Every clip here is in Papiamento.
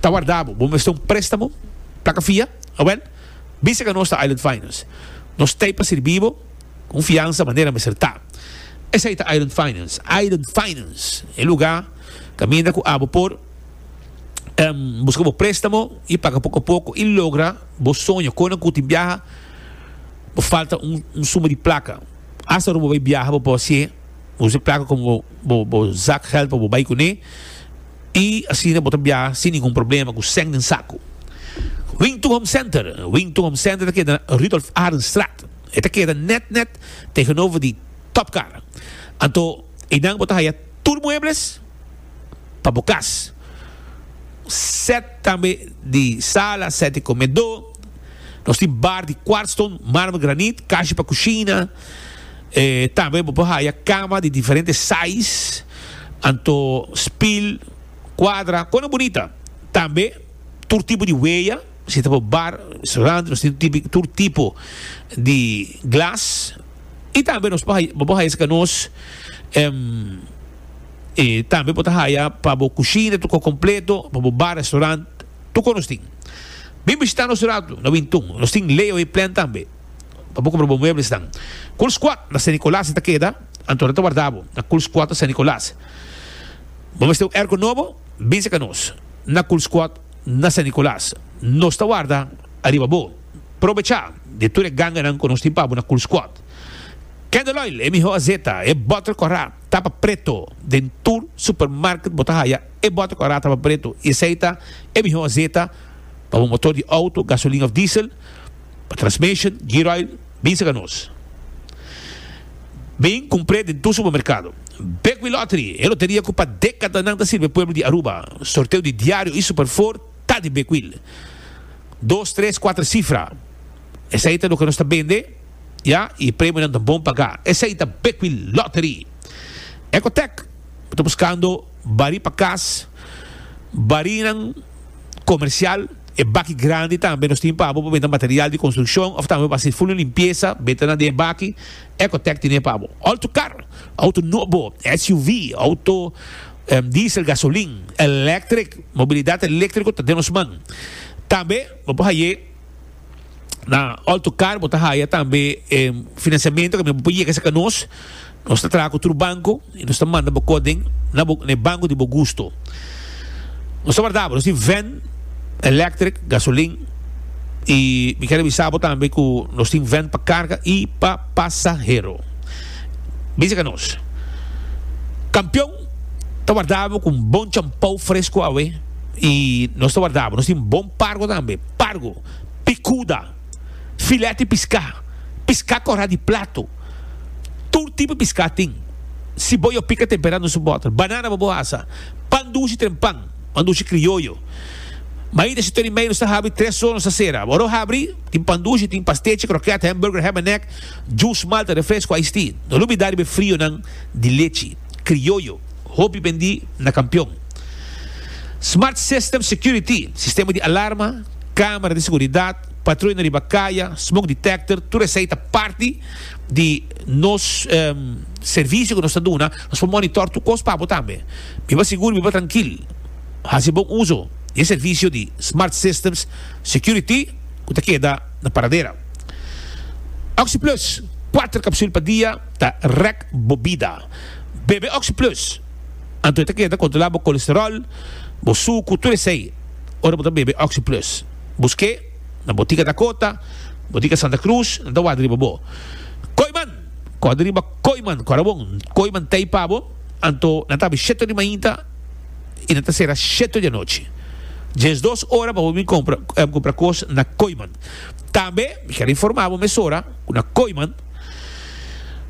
Ta warda bo. Bo mester un prestamo plaka fia? Awel, bisa ka nos ta Island Finance. Nos t'ei pa sirbi bo ku un fiansa manera mester ta. Esei ta Island Finance. Island Finance, e lugá kaminda ku abo por buska bo prestamo i paga poko a poko i logra bo soño. Konan ku tin biaha bo falta un suma di plaka. Asta ora bo bai biaha bo por hasié usa e plaka komo bo zak gèld pa bo bai kuné. I asina bo ta biaha sin ningun problema ku sèn den saku. Wing to Home Center, Wing to Home Center ta keda na Rudolf Arenstraat. E ta keda nèt nèt tegenover di Top Car. Anto einan bo ta haya tur muebles pa bo kas. Sèt tambe di sala, sèt di komedó. Nos tin bar di kwartston, marmer, granit, kashi pa kushina. Tambe bo por haya kama di diferente sais, anto spil, kuadra, kona bunita. Tambe tur tipo di weya, si ta bo bar, restaurante, nos tin tipi tur tipo di glas. I tambe nos por bo por haya esei ka nos. I tambe bo ta haya pa bo kushina tur kos kompleto, pa bo bar, restaurante, tur kos nos tin. Bin bishita nos un ratu na Wintun. Nos tin Leo Hei Plan tambe. pa bo compra bo muebles nan. Kulsquad na Sint-Nicolaas e ta keda, anto nan ta warda bo na Kulsquad na Sint-Nicolaas. Bo mester un erko nobo? Binse ka nos na Kulsquad na Sint-Nicolaas, nos ta warda ariba bo. Probecha di tur e ganganan ku nos tin pa bo na Kulsquad. Candle Oil, e mihó azeta, e bòter kòrá ta pa preto. Den tur supermarket bo ta haya e bòter kòrá ta pa preto i esei ta e mihó azeta pa bo motor di outo, gasolina òf diesel. Pa transmission gear oil bin serka nos. Bin kumpr'é den tur supermerkado. Bekwee Lottery, e loteria ku pa dekadanan ta sirbi e pueblo di Aruba. Sorteo di diario i superfor ta di Bekwee. Dos, tres, kuater sifra, esei ta loke nos ta bende, ya, i e premionan ta bon pagá. Esei ta Bekwee Lottery. Ecotec, bo ta buskando barí pa kas, barinan komersial. E baki grandi tambe nos tin pa bo pa benta material di konstrukshon òf tambe pa hasi fulu limpiesa, benta na den e baki. Ecotec tin e pa bo òuto kar, òuto nobo, SUV, òuto diesel, gasolin, elèktrik. Mobilidat eléktriko ta den nos man. Tambe bo por haya na òuto kar bo ta haya tambe e finansiamentu kaminda bo por yega esaki nos. Nos ta traha ku tur banko i nos ta manda bo kort den na bo na e banko di bo gusto. Nos ta warda bo. Nos tin vèn elèktrik, gasolin i mi kere bisa bo tambe ku nos tin vèn pa karga i pa pasahero. Bisa ka nos. Kampion ta warda bo ku un bon champou fresku awe i nos ta warda bo. Nos tin bon pargo tambe, pargo, pikuda, filèt di piská, piská kòrá di plato. Tur tipo piská tin. Si bo yo pika temperá nos bòter. Banana bo bo asa. Pan dushi tren pan. Pan dushi krioyo. Mañita si Tony Meyer nos ta habri tres sor nos ta sera. Bo ora habri tin pan dushi, tin pastechi, krokèt, hamburger, ham en èk, jus, malta, refresko, iced tea. No lubidá riba e frionan di lechi krioyo. Hopi bendí na Kampion. Smart System Security, sistema di alarma, kamera di seguridat. Patruya riba kaya, smoke detector, tur esei ta parti di nos servisio ku nos ta duna. Nos por monitor tur kos pa bo tambe. Biba sigur, biba trankil. Hasi bon uso di e servisio di Smart Systems Security ku ta keda na Paradera. Oxyplus, kuater kapsul pa dia ta rèk bo bida. Bebe Oxyplus, anto e ta keda kontrolá bo kolesteròl, bo suku, tur esei ora bo ta bebe Oxyplus. Buske na Botica Dakota, Botica Santa Cruz, nan ta warda riba bo. Koiman! Kòrda riba Koiman, kòrda bon, Koiman t'ei pa bo. Anto nan ta abi sheto di mainta i nan ta sera sheto di anochi. Djes dos ora pa bo bin kompra kompra kos na Koiman. Tambe mi kier a informa bo mesora ku na Koiman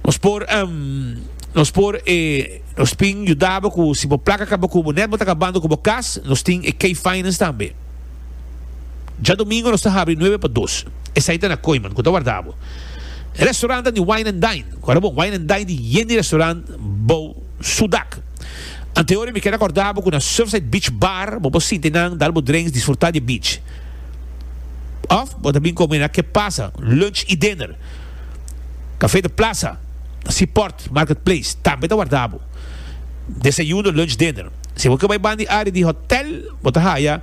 nos por nos por e nos tin yuda bo ku si bo plaka kaba ku bo nèt bo ta kabando ku bo kas nos tin e K-Finance tambe. Djadomingo nos ta habri nuebe pa dos. Esei ta na Koiman, ku ta warda bo. E restaurant ta di Wine and Dine. Ku ora bo Wine and Dine di yen di restaurant bou su dak. Antehorie mi keda korda bo ku na Surfside Beach Bar bo por sinti nan dal bo drinks disfruta di e beach. Of bo ta bin komi na Ke Pasa, lunch i dinner. Café de Plaza, Seaport Market Place tambe ta warda bo. Desayuno, lunch, dinner. Si bo ke bai bandi area di hotel bo ta haya